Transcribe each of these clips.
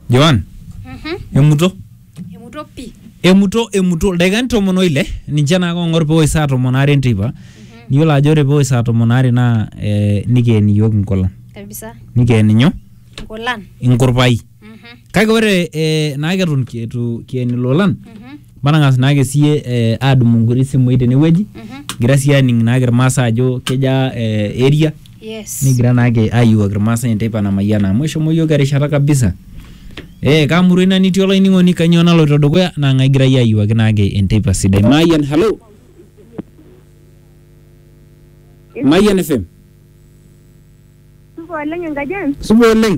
Joan, Mhm. emuto Emuto pi. emuto emuto ildaikani tomon oile ninche naa kong'or pewosh saa tomon aare enteipa niyiolo ajo ore pewosh saa tomon aare naa eh, nikeen iyiok inkolong Kabisa. nikeen inyo Nkulan. inkurpai Mhm. kake ore eh, naa keton kietu kien ilolan Mhm. matang'as naake siye eh, adumu nkuti simui tenewueji Mhm. kigira siye aning naake irmaasai ajo keja eh, area Yes. nikigira naake ayiewuaki irmaasai enteipa namayiana amu eshomo yiok erishata kabisa ee kamurua ina nitii olainining'oni kanyoo naloito dukuya naa ng'ae egirai ayiewuaki naake enteipa sidai mayian halo mayian fm Supa oleng enkaji ang'. supa oleng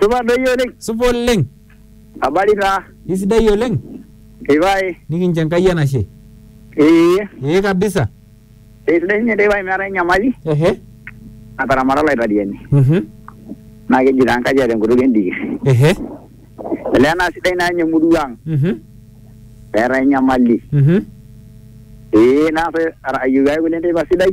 Supa doi oleng. Supa oleng. Habari taa. Isidai oleng. Ipae. Nikincho Enkai enashe. Ee. Ee kabisa. Esidai sinye teipae meetae enyamali. Ehe. Nataramata Olaitoriani. Mhm. Naa keji taa Enkaji eeta enkutuk endikir. Ehe. Olee naa sidai naa ninye emurua ang. Mhm. Meetae enyamali. Mhm. Ee naa ayieu ake kule enteipa sidai.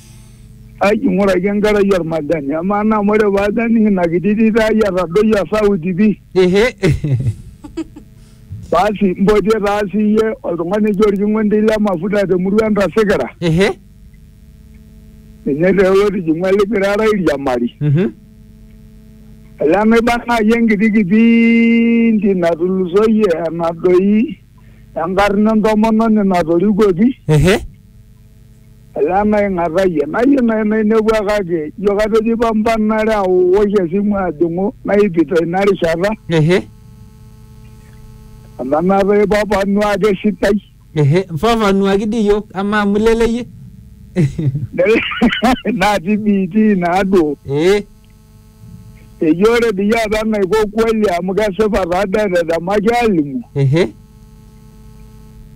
Aji ng'uraki enkerai olmajani. Amaa naa amu ore pee ajo aning ina kiti tito ai etadoyie osauti pi. Ehe. Basi mpotie taa sii iyie oltung'ani oji olking'ondi le mafuta te murua entasikira. Ehe. Ninye taa otijing'ua lipirara airiamari. Mhm. Olee naiba naaji enkiti kipindi natulusoyie enadoi. enkarna entomononi natorikuoki ehe ele naing'atayie nayie nai nainepua kake ijo katejo ipampanare awosh esimu ajing'u naipito ina rishata ehe amu enaata ipapanu ake esidai ehe fafanuaki dii iyiok amaa amu ileleyie natii biitii naaduo ee Eji ore peyie apa enaiko kweli amu kesipa taa dee etetemaki alimu. Ehe.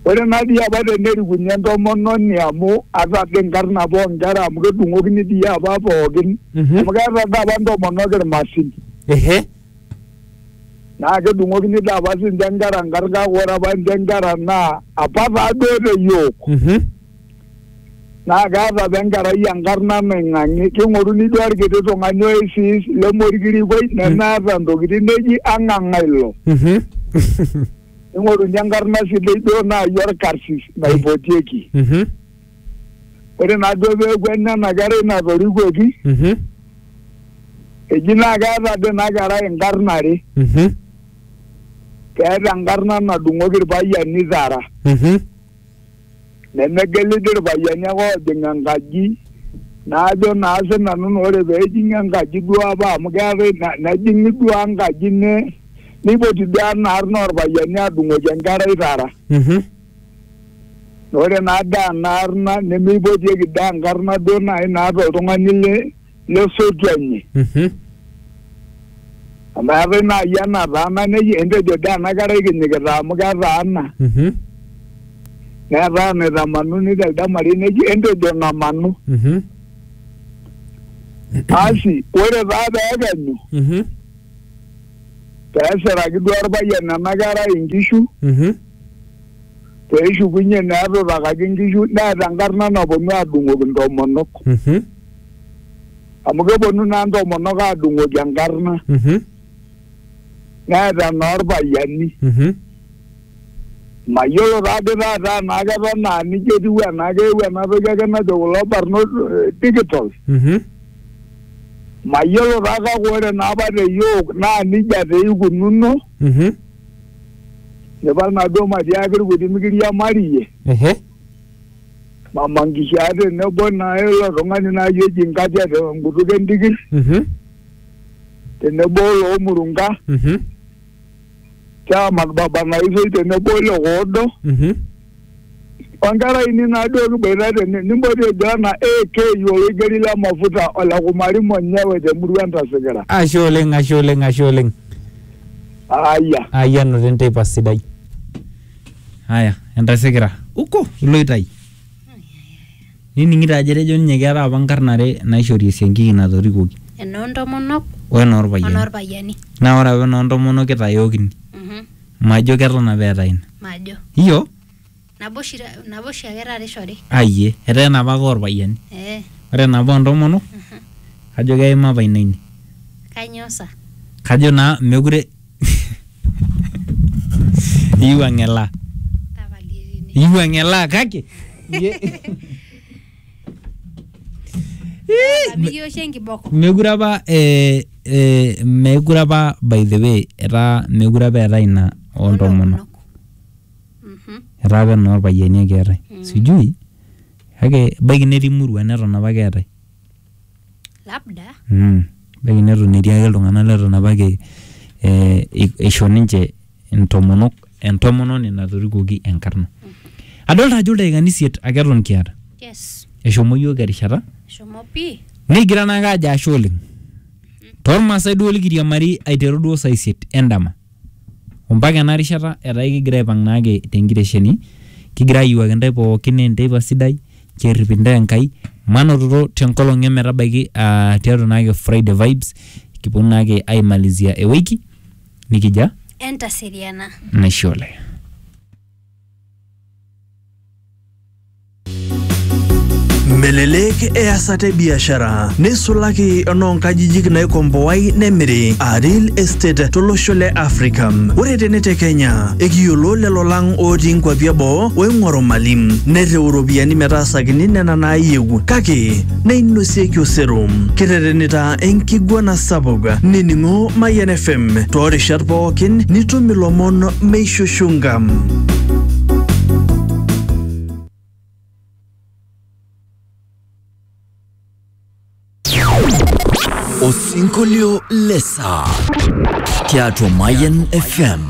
Ore naa dii apa tenerikuni entomononi amu ata dii nkarn apa oo nkera amu kedung'okini dii apa pookin. Mhm. Amu keeta dii apa ntomonok ilmasin. Ehe. Naa kedung'okini dii apa sii ninche nkera nkarn kake ore apa ninche nkera naa apa taa duo te yiok. Mhm. naa keeta apa enkerai enkarna naing'ang'i king'oruni duo orkiti tung'ani oisis lemorkirikuai nemeeta ntokitin neji ang'ang'a ilo Mhm. ning'oruni enkarna sidai duo naaji orkarsis naipotieki Mhm. ore naa duo peeku ena ena kerai natorikuoki Mhm. eji naa keeta dii ina kerai inkarn are Mhm. keeta enkarna nadung'oki irpayiani tara Mhm. nemegiliki irpayiani ake oojing enkaji najo naa sinanu naa ore peejing'i enkaji duo apa amu keetae na- nejing'i duo enkaji ne neipoti duo enaarna orpayiani adung'oki enkerai tara Mhm. ore naa daa enaarna nemeipotieki daa enkarna duo naaji naata oltung'ani le lesotu enye Mhm. amu eetae naaji enataana neji entejo dee ena kerai kinyikita amu ketaana Mhm. neetae enaitamanuni telde marei neji entejo ng'amanu Mhm. asi ore taa peekenyu Mhm. peesiraki duo orpayian ena kerai inkishu Mhm. peeshukunye neetutakaki inkishu neeta enkarna naponu aadung'oki intomonok Mhm. amu keponu naa ntomonok aadung'oki enkarna Mhm. neeta enoorpayiani Mhm. mayiolo taadi taata enaa keton aa nijia etiu enaa keewuo ena toki ake najo kulo barnot eh, digital Mhm. mayiolo taa kake ore naapa te yiok naa nijia taa eikununo Mhm. nipal naaduo matiaaki irkuti mikiriamariyie Ehe. Mama Nkishaa tenebo naa ilo tung'ani naaji oji Nkatia te nkutuk entikir Mhm. tenebo oloo Murunga Mhm. Chairman Baba Naisoi tenebo ole Koodo Mhm. onkera ainei naaduo kiboita tene nimpoti ejo ena AK oloigeri le mafuta ole Kumari Monyewe temurua Entasikira. Ashe oleng, ashe oleng, ashe oleng. Aya. Ayianute nteipa sidai. Aya, entasikira. Uko, iloito ai? Nining'ito ajo etejo ninye keetae apa nkarn are naishori esiankiki natorikuoki. Enoo ntomonok O enoorpayiani. onoorpayiani. Naa ore apa enoontomonok kitayookini. Mhm. Majo keton apa eetae ina. Majo. Iyo? Nabo oshi ta- nabo oshi ake taata ishori. Ayie. Etaa enapa ake oorpayiani. Ee. Ore enapa oo ntomonok, kajo keima apa ina ine. Kainyoo sa? Kajo naa mekure eyieu ang'elaa Tapalie tene. eyieu ang'elaa kake Mikiya oshi enkiboko. mekure apa eh, eh, mekure apa by the way etaa mekure apa eetae ina oontomonok Mhm. etaa apa enoorpayiani ake eetae sijui kake ebaiki netii murua neton apa keetae Ebaiki neton etii ake iltung'ana leton apake eisho ninche intomonok entomononi natorikuoki enkarna. Adolita ajo ildaikani isiet ake eton kiata. Eshomo iyiook erishata. Nikigira naake aajo ashe oleng. Toolmaasai duo likiriamari aiteru duo saa isiet endama. Ompaka ena rishata etaa ekigira aipang naake te nkitesheni kigira ayiewuaki intae pookin enteipa sidai nchoo errip intae Enkai manototo te nkolong e metabaiki aa tiatua naake Friday Vibes kiponu naake aimalizia ewiki nikijia Entaseriana. Naishe Oleng. Melelek easata e biashara neisulaki enoonkajijik naikomboai nemiri aa real estate tolosho le Africa. Ore tene te Kenya ekiyiolo lelo lang ootii nkwapi eboo oing'oru mali nereu iropiyiani metaasakini nena naayieu kake neinosieki osero. Kirretenita enkiguana sapuk nining'o Mayian FM toorishat pookin nitum ilomon meishushunka. Osinkolio lesa tiatua Mayan FM.